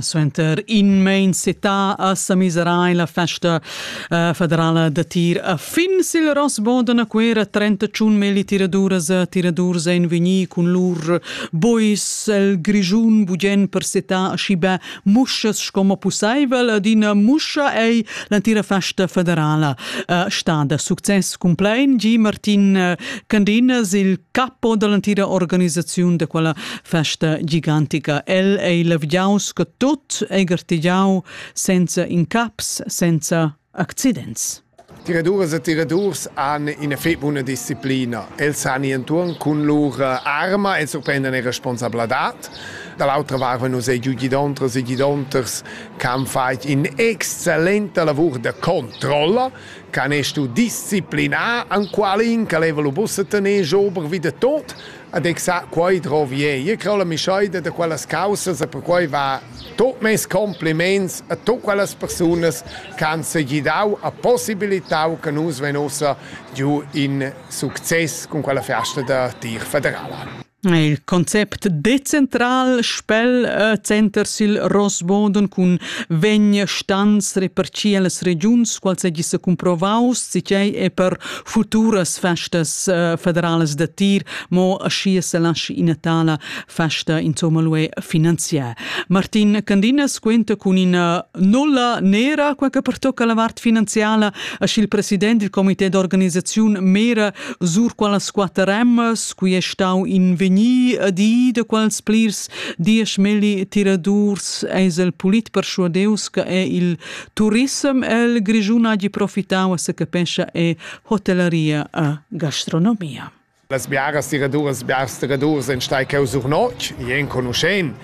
Suenter in main setà a Samisera è la festa uh, federala da tir a fin sil Rossboden a Cuera 31 meli tiraduras e tiradurs ein vegnì cun lur bois el Grischun bugen per setà aschibe muschas sco pusseivel ad ina muscha ei l'entira festa federala uh, stada success cumplein Gi Martin uh, Candinas il capo dall'entira organisaziun da quella festa gigantica. El ei levgiaus sco tut, ei gartegiau senza incaps, senza accidents. Tiraduras e tiradurs han ina fetg buna disciplina. Els han enturn cun lur arma, els surprendan era responsabladad. Dall'autra varva nus ei giu gidontras e gidonters che han fatg in'excellenta lavur da controlla, che han stu disciplinar enqualin che leva lu buca tener ober vi de tot, Ed eg sa, quei drovi ei. Io creu la mischaida da quellas caussas e perquei va tut mes compliments a tut quellas persunas che han segidau e possibilitau che nus vein ussa giu in success cun quella festa da tir federala. Il concept decentral spel äh, center sil Rosboden cun vegn stans reperci las regiuns qual segi se cumprovaus si tgei e per futuras festas uh, federalas da tir, mo aschia se lasci ina tala festa insomma lui finanziar. Martin Candinas quenta con ina nulla nera quella che pertocca la vart finanziala a il president del comité d'organizzazione mera sur qualas quatter rems qui è stau in veni di de quals plirs dies meli tiradurs es el polit per sua deus che è il turissem el Grischun hagi profitau a se capescha e hotellaria a gastronomia. Las biaras tiraduras biars tiradurs en stai cheu sur notg, i enconuschen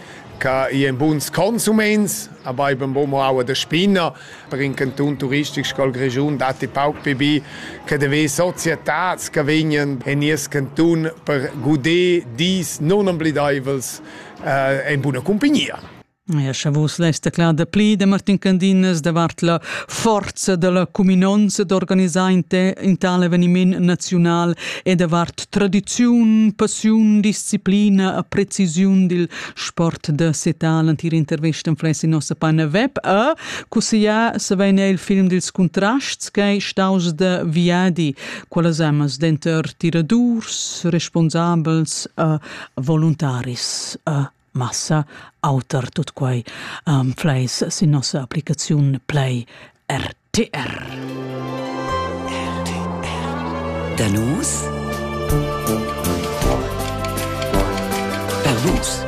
che i en buns consuments, aber eben bo mo aua de spina, per in canton turistic scol Grischun datti pauc pibi che de ve societats che vegnen en nies canton per guder dis non oblideivels eh, en buna compagnia. Ja, scha vus lest cler da pli da Martin Candinas davart la forza da la cuminonza d'organisar in, te, in tal eveniment naziunal e davart tradiziun, passiun, disciplina e precisiun dil sport da setal antir intervista en fles in nossa pagina web a cussiglià se vein il film dils contrasts che staus da Viadi, qualas amas denter tiradurs, responsabels e voluntaris a massa auter tut quai um, fleis sin nossa applicaziun Play RTR. RTR. Danus per vus.